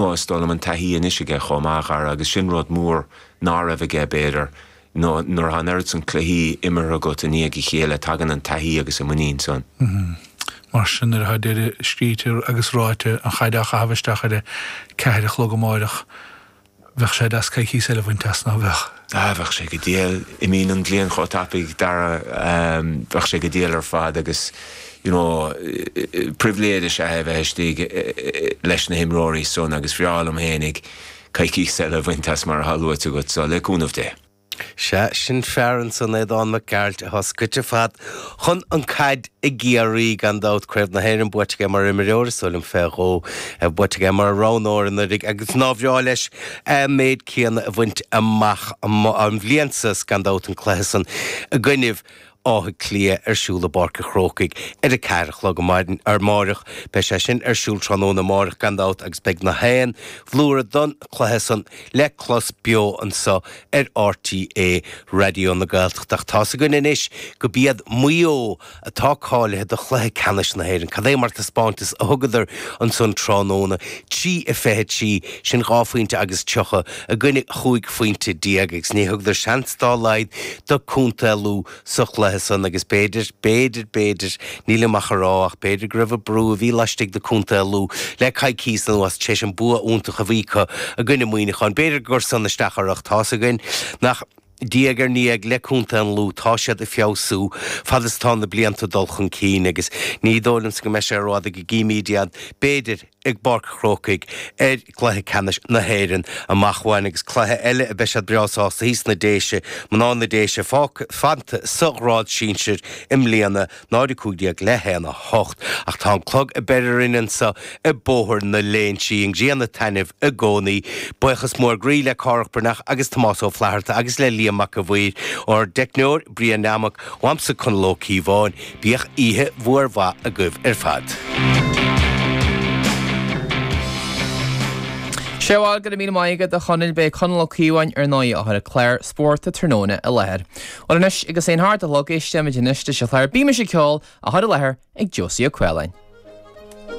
Bhuel, is dóigh liom an taithí anois aige chomh maith, a Dhara, agus sin rud mór ná raibh aige, b'fhéidir, nó nuair atá an oiread san cluichí imeartha agat i ndiaidh a chéile, tagann an taithí agus an muinín san. Mar sin, nuair atá deireadh scríte agus ráite an chaid á chaitheamh isteach ar a ceathair a chlog amáireach, bheadh sé deas coicíos eile a bhaint as, ná bheadh? Ah, bheadh sé go diail. Imíonn an bhliain chomh tapaidh, Dara, bheadh sé go diail ar fad agus you know pribhléid is ea é bheith istigh leis na himreoirí san agus bhreá liom fhéinig coicís eile a bhaint as mar atá luaite agat so le cúnamh Dé. Sea, sin fear ansan, Aodán Mac Gearailt, atá scoite ar fad chun an caid i gCiarraí, gan dabht, Craobh na hÉireann buaite aige mar imreoir, is dóigh liom, fé dhó, buaite aige mar roghnóir anuiridh agus nár bhreá leis a' méid céanna a bhaint amach an bhliain sa 's gan dabht an cluiche san i gcoinnibh Átha Cliath ar siúl i bPáirc a' Chrócaigh ar a ceathair a chlog amáireach. Beidh sé sin ar siúl tráthnóna amáireach gan dabht agus beidh na haon bhlúire don chluiche san le clos beo anso ar RTÉ Raidió na Gaeltachta ach tá's againn anois go b'iad Maigh Eo atá cáilithe do chluiche ceannais na hÉireann. Cad é mar taispeáintas a thugadar ansan tráthnóna, trí a fiche trí, sin dhá phointe agus tríocha, i gcoinne chúig phointe déag agus ní thugadar seans dá laghad do Contae Lú sa chluiche san agus b'fhéidir, b'fhéidir, b'fhéidir, nílim ach a rá ach b'fhéidir go raibh an brú a bhí laistigh de Contae Lú le coicíos anuas tar éis an bua iontach a bhí acu i gcoinne Muineacháin, b'fhéidir gur san isteach orthu ach tá's againn nach. Diaidh ar ndiaidh, le Contae an Lú, tá siad ag feabhsú fad is atá na blianta ag dul chun cinn agus ní dóigh liomsa go mbeidh sé rófhada go gcífimíd iad, b'fhéidir, i bPáirc a' Chrócaigh ar Chluiche Ceannais na hÉireann amach uainn agus cluiche eile a mbeidh siad breá sásta thíos sna Déise, mná na Déise, fágtha, fanta sa ghrád sinsir i mbliana. 0, 15, le haon, 8, ach tá an clog ag breith orainn anso i mBóthar na Léinsí, an ghrian ag taitneamh i gcónaí. Baochas mór groí le Cárthach Breathnach agus Tomás Ó Flatharta agus le Liam Mac a' Mhaoir, ár dteicneoir, Brian Nammock, uaimse Conall Ó Cíobháin. Bíodh oíche mhór mhaith agaibh ar fad. Sea, bhuel, go raibh míle maith agat a Chonaill, b'é Conall Ó Cíobháin ar ndóigh a chuir clár spórt an tráthnóna i láthair. Bhuel anois, agus é a hocht a chlog, éistfimid anois leis an chlár Bímis ag Ceol, á chur i láthair ag Josie Ó Cualáin.